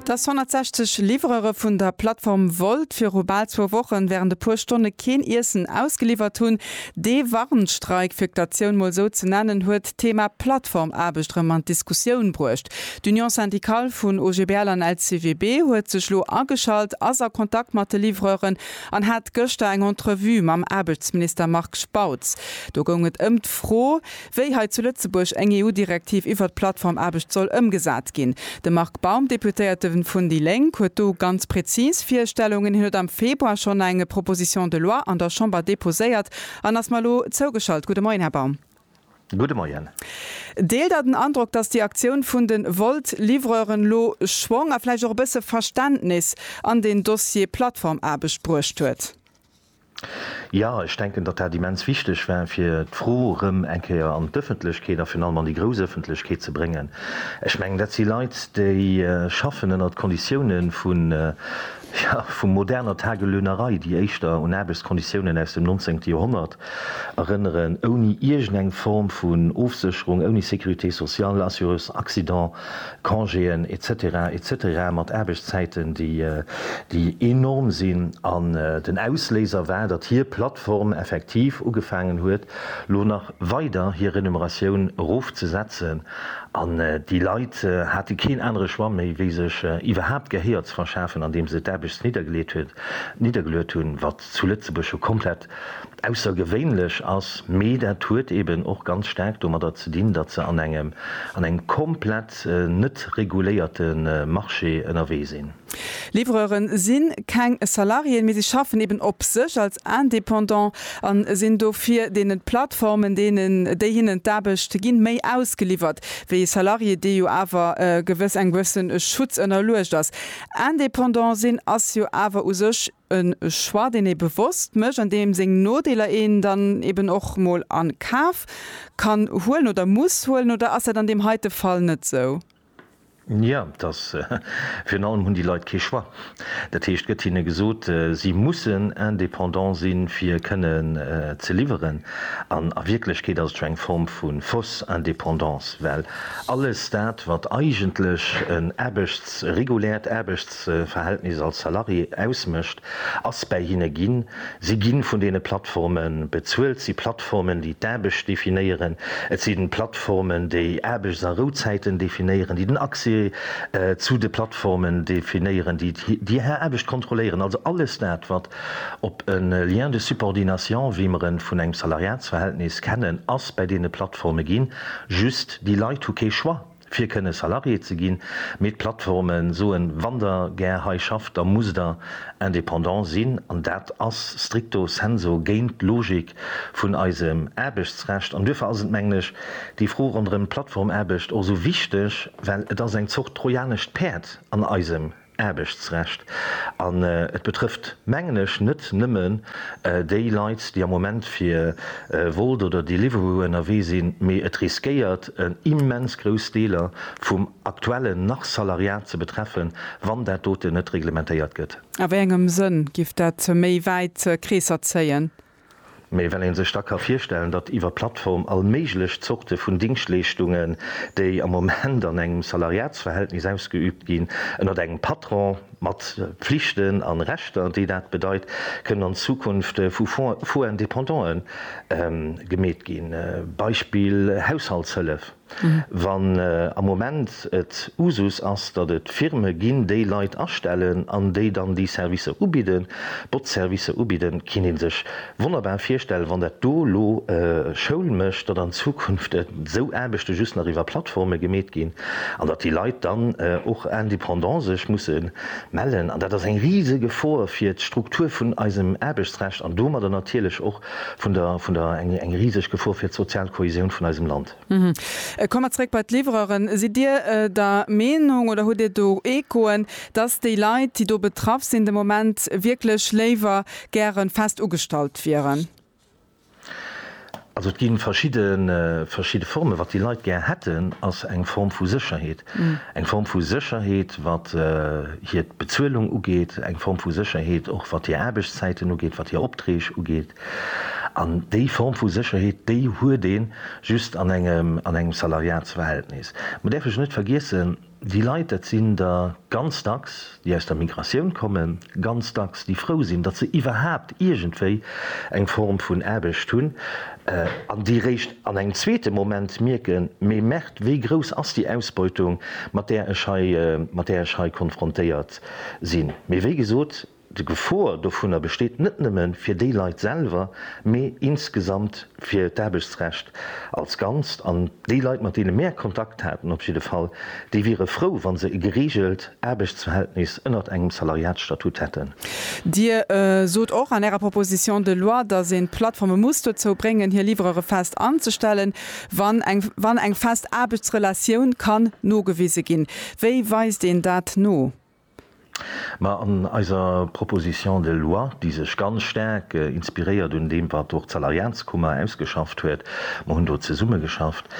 Dass 160 Livreure vun der Plattform Wolt viru bal zwou Wochen wärend e puer Stonne keen Iessen ausgeliwwert hunn, dee Warnstreik, fir d'Aktioun mol sou ze nennen, huet d'Thema Plattformaarbecht erëm an d'Diskussioun bruecht. D'Union syndicale vun OGBL an LCWB huet sech lo ageschalt, ass a Kontakt mat de Livreuren an hat gëschter eng Entrevue mam Aarbechtsminister Marc Spautz. Do goung et ëm d'Fro, wéi hei zu Lëtzebuerg eng EU-Direktiv iwwert d'Plattformaarbecht soll ëmgesat ginn. De Marc Baum, Deputéierte vun déi Lénk, huet do ganz prezis Virstellungen. Hien huet am Februar schonn eng Proposition de loi an der Chamber deposéiert an ass mer elo zougeschalt. Gudde Moien, Här Baum. Gudde Moien. Deelt Der den Androck, datt déi Aktioun vun de Wolt-Livreuren elo Schwong a vläicht och e bësse Verständnis an deen Dossier Plattformaarbecht bruecht huet? Jo, ech denken, datt dat immens wichteg war, fir d'Fro erëm eng Kéier an d'Ëffentlechkeet a virun allem an déi grouss Ëffentlechkeet ze bréngen. Ech mengen, dat si Leit, déi schaffen ënnert Konditioune vu, jo, vu moderner Tagelöhnerei, déi éischter un Aarbechtsconditiounen aus dem nonzéngte Joerhonnert erënneren, ouni iergendeng Form vun Ofsécherung, ouni Sécurité sociale, Assurance accident. Congéen et cetera et cetera mat Aarbechtszäiten, déi déi enorm sinn. An den Ausléiser war, datt hir Plattform effektiv ugefaangen huet, lo nach weider hir Renumeratioun erofzesetzen. An déi Leit hate keen anere Choix méi, wéi sech iwwerhaapt Gehéier ze verschafen, andeem se d'Aarbecht niddergeleet hunn, niddergeluet hunn, wat zu Lëtzebuerg jo komplett aussergewéinlech ass, mee dat huet eben och ganz staark domadder ze dinn, datt se an engem an engem komplett net reguléierte Marché ënnerwee sinn. Livreuren si keng Salariéen, mee si schaffen eben op sech als Indépendant a sinn dofir deene Plattformen, deenen, déi hinnen d'Aarbecht ginn, méi ausgeliwwert wéi ee Salarié, dee jo awer gewëss engem gewësse Schutz ënnerluecht ass. Indépendant sinn ass jo awer u sech E Choix, deen ee bewosst mécht an deem seng Nodeeler een dann eben och mol a Kaf kann huelen oder muss huelen. Oder ass dat an deem heite Fall net esou? Jo, et ass. Virun allem hunn déi Leit kee Choix. Dat heescht, et gëtt hinne gesot, si mussen indépendant sinn, fir kënnen ze liwweren. An a Wierklechkeet ass et scho eng Form vu fausse indépendance, well alles dat, wat eigentlech en Aarbechts-, reguläert Aarbechts-, Verhältnis als Salarié ausmécht, ass bäi hinne ginn. Si gi vun deene Plattforme bezuelt. Et si Plattformen, déi d'Aarbecht definéieren. Et sinn Plattformen, déi Aarbechts a Rouzäiten definéieren, déi den Accès zu de Plattformen definéieren, déi déi Här Aarbecht kontrolléieren. Also alles dat, wat op e Lien de subordination, wéi mer e vun engem Salariatsverhältnis kennen, ass bäi deene Plattforme ginn. Just déi Leit hu kee Choix. fir kënne Salarié ze ginn, mee d'Plattforme soen, wann der gär hei schafft, da musst der indépendant sinn an dat ass stricto senso géint d'Logik vun eisem Aarbechtsrecht. An duerfir ass et, mengen ech, déi Fro ronderëm d'Plattformaarbecht och esou wichteg, well et ass eng Zort trojanescht Päerd an eisem Aarbechtsrecht. An et betrëfft, mengen ech, net nëmmen déi Leit, déi am Moment fir Wolt oder Deliveroo ënnerwee sinn, mee et riskéiert en immens grouss Deeler vum aktuellen nach Salariat ze betreffen, wann dat doten net reglementéiert gëtt. A wéi engem Sënn giff dat méi wäit Kreesser zéien? Mee well ee sech da ka virstellen, datt iwwer d'Plattform all méiglech Zorte vun Dingschtleeschtungen, déi am Moment an engem Salariatsverhältnis ausgeübt ginn, ënnert engem Patron, mat Pflichten a Rechter, déi dat bedeit, kënnen an Zukunft vu Faux-indépendant'e gemeet ginn, Beispill Haushaltshëllef. Wann am Moment et Usus ass, datt et Firme ginn, déi Leit astellen an déi dann déi Servicer ubidden, Botzservicer ubidden, kinnt ee sech wonnerbar virstellen, wann dat do elo Schoul mécht, datt an Zukunft esou Aarbechte just nach iwwer Plattforme gemeet ginn an datt déi Leit dann och indépendant sech musse mellen. An dat ass eng Risegefor fir d'Struktur vun eisem Aarbechtsrecht an domadder natierlech och vun der vun der eng eng riseg Gefor fir d'sozial Kohäsioun vun eisem Land. Komme mer zréck bei d'Livreuren. Sidd Dir der Meenung oder hutt Dir do Echoen, dass déi Leit, déi do betraff sinn, de Moment wierklech léiwer gäre fest ugestallt wieren? Also et gi verschidde verschidde Formen. Wat déi Leit gär hätten, ass eng Form vu Sécherheet. Eng Form vu Sécherheet, wat hir d'Bezuelung ugeet, eng Form vu Sécherheet och wat hir Aarbechtszäiten ugeet, wat hir Opträg ugeet. An déi Form vu Sécherheet, déi huet ee just an engem, an engem Salariatsverhältnis. Mir däerfe jo net vergiessen, déi Leit, dat sinn der ganz dacks, déi aus der Migratioun kommen, ganz dacks, déi frou sinn, datt se iwwerhaapt iergendwéi eng Form vun Aarbecht hunn, an déi réischt an engem zweete Moment mierken, Mee Merd, wéi grouss ass déi Ausbeutung, mat där ech hei, mat där ech hei konfrontéiert sinn? Mee wéi gesot, d'Gefor dovunner besteet net nëmme fir déi Leit selwer, mee insgesamt. fir d'Aarbechtsrecht als Ganzt, an déi Leit, mat deene mär Kontakt haten, op jidde Fall, déi wiere frou, wa se e gereegelt Aarbechtsverhältnis ënnert engem Salariatsstatut hätten. Dir sot och an Ärer Proposition de loi, dass een d'Plattforme muss dozou bréngen, hir Livrere fest anzestellen, wann eng wann eng fest Aarbechtsrelatioun kann nogewise ginn. Wéi weist een dat no? Ma an eiser Proposition de loi, déi sech ganz staark inspiréiert un deem, wat och d'Salariatskummer ausgeschafft huet, mer hunn do zesummegeschafft,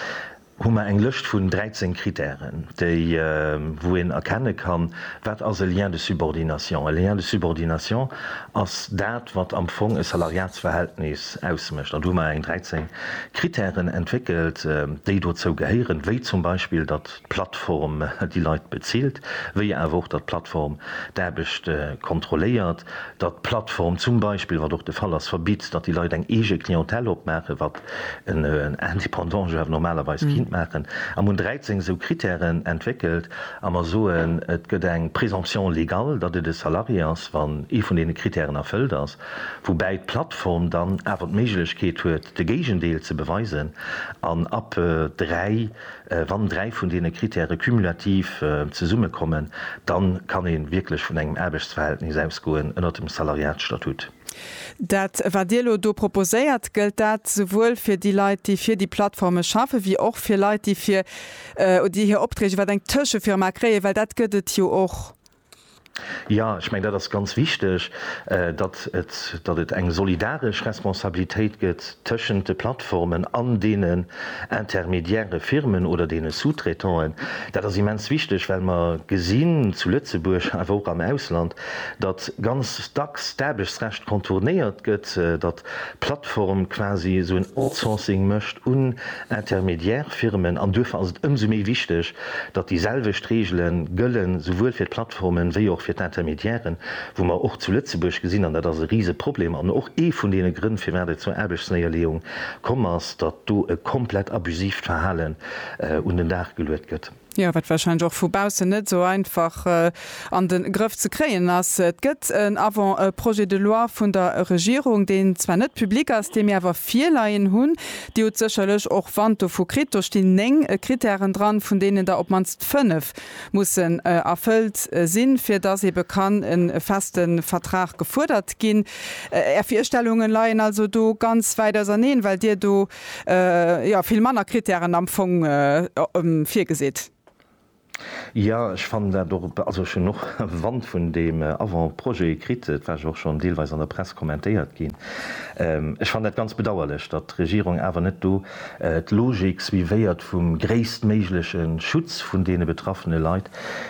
hu mer eng Lëscht vun 13 Kritären, déi, wou een erkenne kann, wat ass e Lien de subordination. E Lien de subordination ass dat, wat am Fong e Salariatsverhältnis ausmécht. An do hu mer eng 13 Kritären entwéckelt, déi dozou gehéieren, wéi zum Beispill, datt. d'Plattform déi Leit bezilt, wéi awer och datt d'Plattform d'Aarbecht kontrolléiert, datt d'Plattform zum Beispill, wat och de Fall ass, verbitt, datt déi Leit eng eege Clientèle opmaachen, wat en Indépendant jo awer normalerweis kinnt maachen. A mir hunn 13 esou Kritären entwéckelt a mer soen, et gëtt eng Présomption légale, datt et e Salarié ass, wann ee vun deene Kritären erfëllt ass, woubäi d'Plattform dann awer d'Méiglechkeet huet, de Géigendeel ze beweisen an ab 3, Wann dräi vun deene Kritäre cumulativ zesummekommen, dann kann ee wierklech vun engem Aarbechtsverhältnis ausgoen ënnert dem Salariatsstatut. Dat, wat Dir elo do proposéiert, gëllt dat souwuel fir déi Leit, déi fir déi Plattforme schaffen, wéi och fir Leit, déi fir, déi hir Opträg iwwer eng Tëschefirma kréien, well dat gëtt et jo och Jo, ech mengen, dat ass ganz wichteg, datt et, datt et eng solidaresch Responsabilitéit gëtt tëschent de Plattformen an deenen intermédiaire Firmen oder deene Sous-traitanten. Dat ass immens wichteg, well mer gesinn, zu Lëtzebuerg, awer och am Ausland, datt ganz dacks d'Aarbechtsrecht contournéiert gëtt, datt Plattform quasi esou en Outsourcing mécht un intermédiaire Firmen an duerfir ass et ëmsou méi wichteg, datt déi selwecht Reegele gëllen, souwuel fir d'Plattformen wéi och fir d'Intermédiairen, wou mer och zu Lëtzebuerg gesinn, an dat ass e Riseproblem an och ee vun deene Grënn firwat et zur Aarbechtsnéierleeung komm ass, datt do e komplett abusivt Verhalen un den Dag geluet gëtt. Jo, wat warscheinlech och vu baussen net esou einfach an de Grëff ze kréien ass. Et gëtt en Avant-projet de loi vun der Regierung, deen zwar net public ass, dee mir awer virleien hunn. Dir hutt sécherlech och Wand dovu kritt. Do stinn néng Kritären dran, vun deenen der op d'mannst fënnef mussen erfëllt sinn, fir dass eebe kann e feste Vertrag gefuerdert ginn. Är Virstellunge leien also do ganz wäit auserneen, well Dir do, jo vill manner Kritären am Fong virgesit. Jo, ech fannen dat och, also ech hunn och Wand vun deem Avant-projet kritt, et war jo och schonn deelweis an der Press kommentéiert ginn. Ech fannen dat ganz bedauerlech, datt d'Regierung awer net do d'Logik suivéiert vum gréisstméigleche Schutz vun deene betraffene Leit,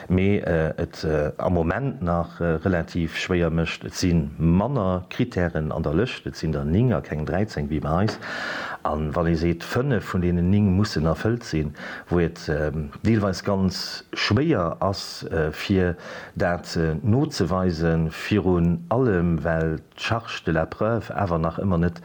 mee et am Moment nach relativ schwéier mécht. Et si manner Krittären an der Lëscht, et sinn der néng a keng 13 wéi bei eis. A wann ee seet, fënnef vun deenen néng mussen erfëllt sinn, wou et deelweis ganz schwéier ass fir dat nozeweise virun allem well d'Charge de la preuve awer nach ëmmer net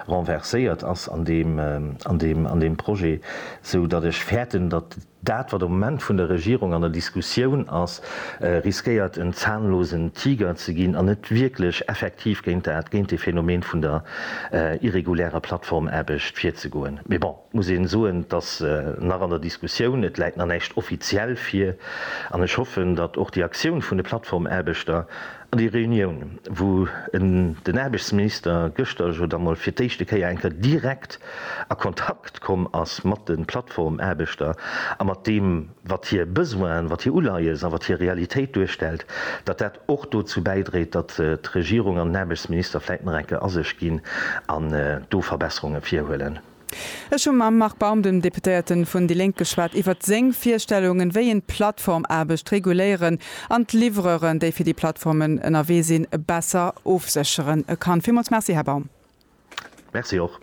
renverséiert ass an deem Projet, sou datt ech fäerten, datt Dat, wat am Moment vun der Regierung an der Diskussioun ass, riskéiert en zahnlosen Tiger ze ginn an net wierklech effektiv géint dat, géint dee Phänomen vun der irregulärer Plattformaarbecht virzegoen. Mee bon, et muss ee soen, et ass nach an der Diskussioun, et läit nach näischt offiziell vir an ech hoffen, datt och déi Aktioun vun de Plattformaarbechter, An déi Reunioun, wou en den Aarbechtsminister gëschter jo da mol fir d'éischte Kéier eng Kéier direkt a Kontakt komm ass mat de Plattformaarbechter a mat deem, wat hir Besoinen, wat hir Uleies a wat hir Realitéit duerstellt, datt dat och dozou bäidréit, datt d'Regierung an den Aarbechtsminister vläicht nach eng Kéier a sech ginn an do Verbesserungen virhuelen. Ech hu mam Marc Baum, dem Deputéierte vun déi Lénk, geschwat iwwert seng Virstellungen, wéi een d'Plattformaarbecht reguléieren an d'Livreuren, déi fir déi Plattformen ënnerwee sinn, besser ofsécheren kann. Villmools Merci, Här Baum. Merci och.